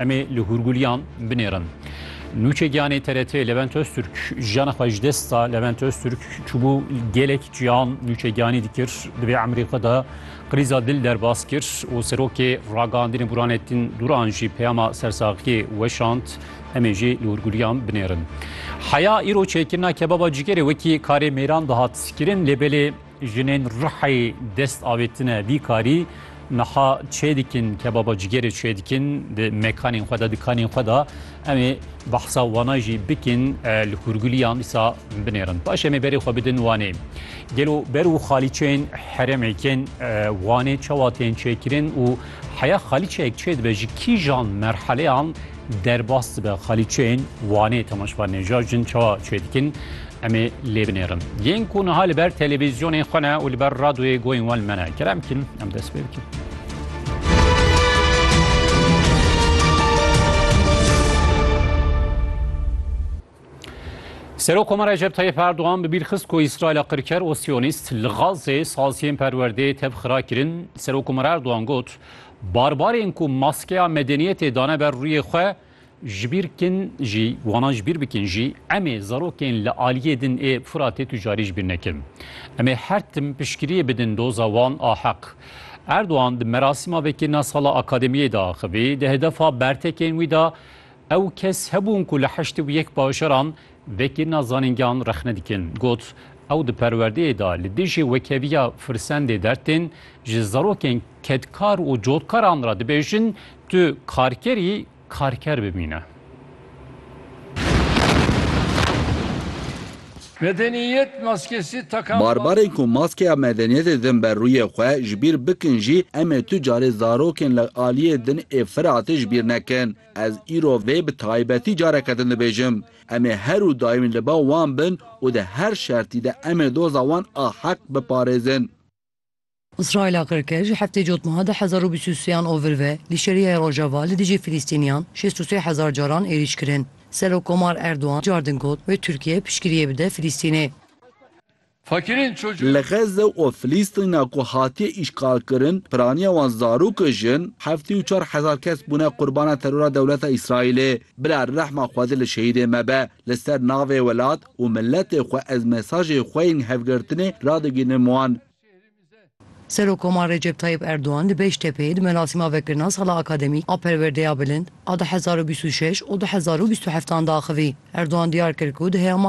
Em ê li hûrgûliyan binêrin. Nûçe Giyanê TRT Levent Öztürk jiyana xwe ji dest da. Levent Öztürk çûbû gelek ciyan Nûçe Giyanî dikir. Di vê emrê xwe de qrîza dil derbas kir û serokê ragihandinê Burhanettin Duran jî peyama sersaxiyê weşand. Em ê jî li hûrgûliyan binêrin. Heya îro çêkirina kebaba cîgerê wekî karê mêran dihat kirin lê belê Jinên Rihayê dest avêtine vî karî niha çêdikin kebaba cigêrê çêdikin di mekanên xwe de di kanên xwe de em ê behsa wana jî bikin li hûrguliyan dîsa binêrin paş em ê berê xwe bidin wanê gelo ber û xalîçeyên heremê kên wanê çawa tên çêkirin û heya xalîçeyek çê dibe ji kîjan merheleyan Derbas dibe xalîçeyên Wanê Temaşva Neja jin çawa çê dikin em ê lê binêrin. Yên ku niha li ber televîzyonên xwe ne û li ber radoyê goyên wan li me ne kerem kîn em dest pê bikin. Serokoma Recep Tayyip Erdogan bi bîr xist ku Îsraîla qirker û Siyonîst li Gazê saziyên perwerdeyê tevxira kirin, Serokoma Erdogan got, Barbarên ku maskeya medeniyetê dane ber rûyê xwe, ji bîr bikin jî, wana ji bîr bikin jî, em ê zarokên li aliyê din ê Furatê tu carî ji bîr nekin. Em ê her tim piştgiriyê bidin doza wan a heq. Erdogan di merasîma vekirina sala akademiyê de axivî, di hedefa bertekên wî de Ew kes hebûn ku li heştê û yek bajaran vekirina zanîngehan rexne dikin. Got, Ew di perwerdeyê de li dijî wekeviya firsendê dertên ji zarokên kedkar û cotkaran re dibêjin tu karkerî karker bimîne. Medeniyet maskesi takan Barbarên ku maskeya medeniyetê din ber rûyê xwe ji bîr bikin jî em ê tu carê zarokên li aliyê din ê Firatê ji bîr nekin. Ez îro vê bi taybetî careke din dibêjim. Em ê her û daîm li ba wan bin û di her şertî de em ê doza wan a heq biparêzin. Îsraîla kir ke ji heftê cotma de hezar û bîst û sê yan ovir ve li şerîyayê Rojava li dijî Filîstîniyan şêst û sê hezar caran êrîş kirin. Serokkomar Erdogan cardin got wê Tirkiye piştgiriyê bide Filîstînê. Li Xezze û Filîstîna ku hatiye îşxalkirin, piraniya wan zarok û jin, heftê û çar hezar kes bûne qurbana terora dewleta Îsraîlê. Bila rehma Xwedê li şehîdên me be. Li ser navê welat û miletê xwe ez mesajê xwe yên hevgirtinê radigihînim wan. Serokkomarê Recep Tayyîp Erdogan li Beştepeyê di merasîma vekirina sala akademîk a perwerdeya bilind a du hezar û bîst û şeş û du hezar û bîst û heft an de axivî. Erdogan diyar kir ku di heyama